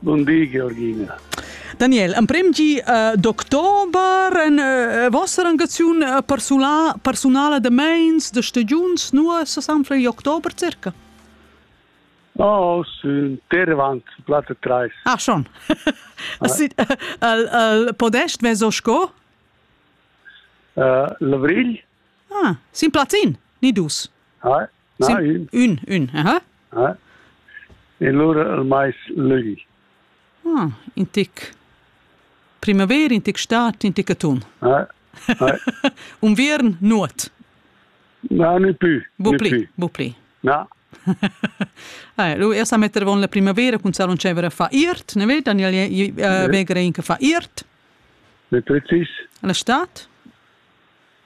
Bun di, Georgina. Daniel, emprem gi uh, d'october en uh, vostra engaziun uh, persula, personala de meins, de stagiuns, nu se sanfla in october circa? Oh, sunt tervant, platte treis. Ah, schon. al, al podest vezo sco? Uh, l'avril. Ah, sin platin, ni dus. Ah, Na, ün. Ün, ün, aha. Eh? E lura il mais lögli. Ah, in tic primavera, in tic stat, in tic atun. Eh, eh. Unviern, nuot. No, ne più. Bu pli, bu pli. No. eh, lui es a metter von la primavera con salon cevera fa iert, ne vedi Daniel uh, Begre in che fa iert. Le precis. La stat.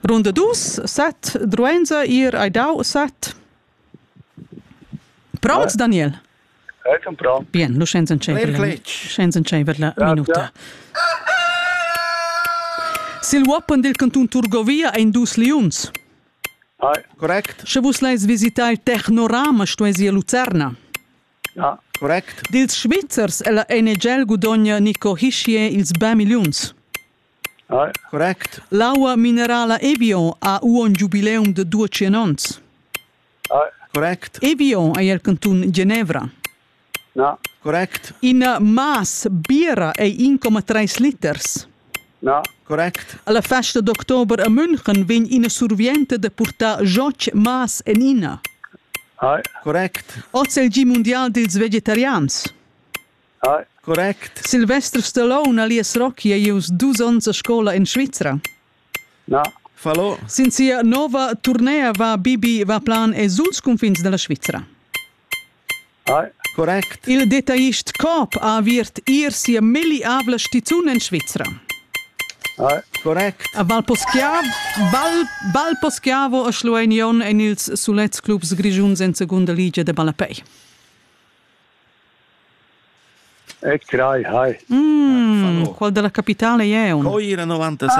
Runda dus, set, Druenza, ir, hai dau set. Pronts, Daniel? Hai comprà. Bien, lu senza encevere. Senza encevere la minuta. Sil uoppen del canton Turgovia ein dus liuns. Correct. Sche vus leis visitar il Technorama, stuesi a Lucerna. Ja, correct. Dils Svizzers e la NGL gudogna Nico Hischier ils ba milliuns. L'aua minerala Evian ha uonn giubileum da duatschien onns. Evian ei el cantun Genevra. Ina mass biera ei 1,3 liters. Alla festa d'october a München vegn ina survienta da purtar joch mass en ina. Oz è il gi mundial dils vegetarians. Correct. Silvester Stallone alias Rocky ei ius dus onns a scola en Svizra. Na. Fallo. Sin sia nova turnea va Bibi va plan e suls cunfins della Svizra. Correct. Il detaillist Coop ha aviert ir sia milliabla stizun en Svizra. Correct. A Valposchiavo, Val, Valposchiavo a Schlueinion en ils sulets clubs grischuns en segunda ligia de ballapei. E crai, hai. Mm, qual della capitale è un? Coira 96.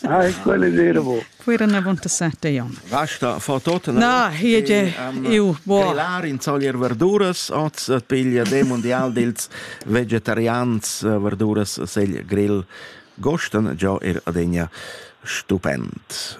Ah, hai, quelle dire bo. Coira 97 è un. Vasta fa tot. Na, hier ge eu bo. Telar in solir verduras, oz piglia de mondial dels vegetarians eh, verduras sel grill gosten, giò er adegna stupend.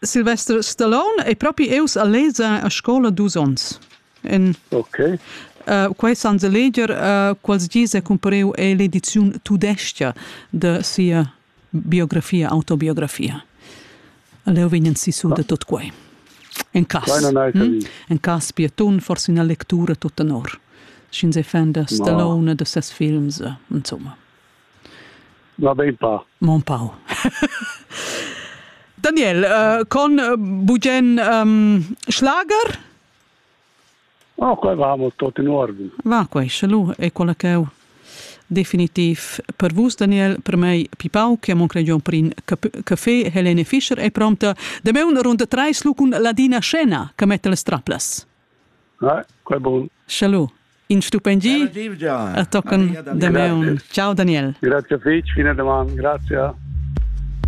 Silvester Stallone è propi eus a leza a scola dus ons. En okay. uh, quai san se leger uh, quals gis è compareu è l'edizione tudestia de sia biografia, autobiografia. Leo vegnan sisu ah. de tot quai. En cas, hm? en cas pietun, forse una lectura tot tenor. Schin se fenda Stallone de ses films, insomma. Va ben pa. Mon pau. Daniel, uh, con uh, bugen um, schlager? Oh, qua vamo tot in ordine. Va, qua, schalu, è quella che ho definitiv per vus, Daniel, per me Pipau, che mon cregion per in caffè, Helene Fischer è pronta. De me un runda treis lu cun ladina scena, che mette le straplas. Eh, qua bon. Schalu. in stupendi a tochen de meun. Ciao Daniel. Grazie fetg, fine daman, grazie.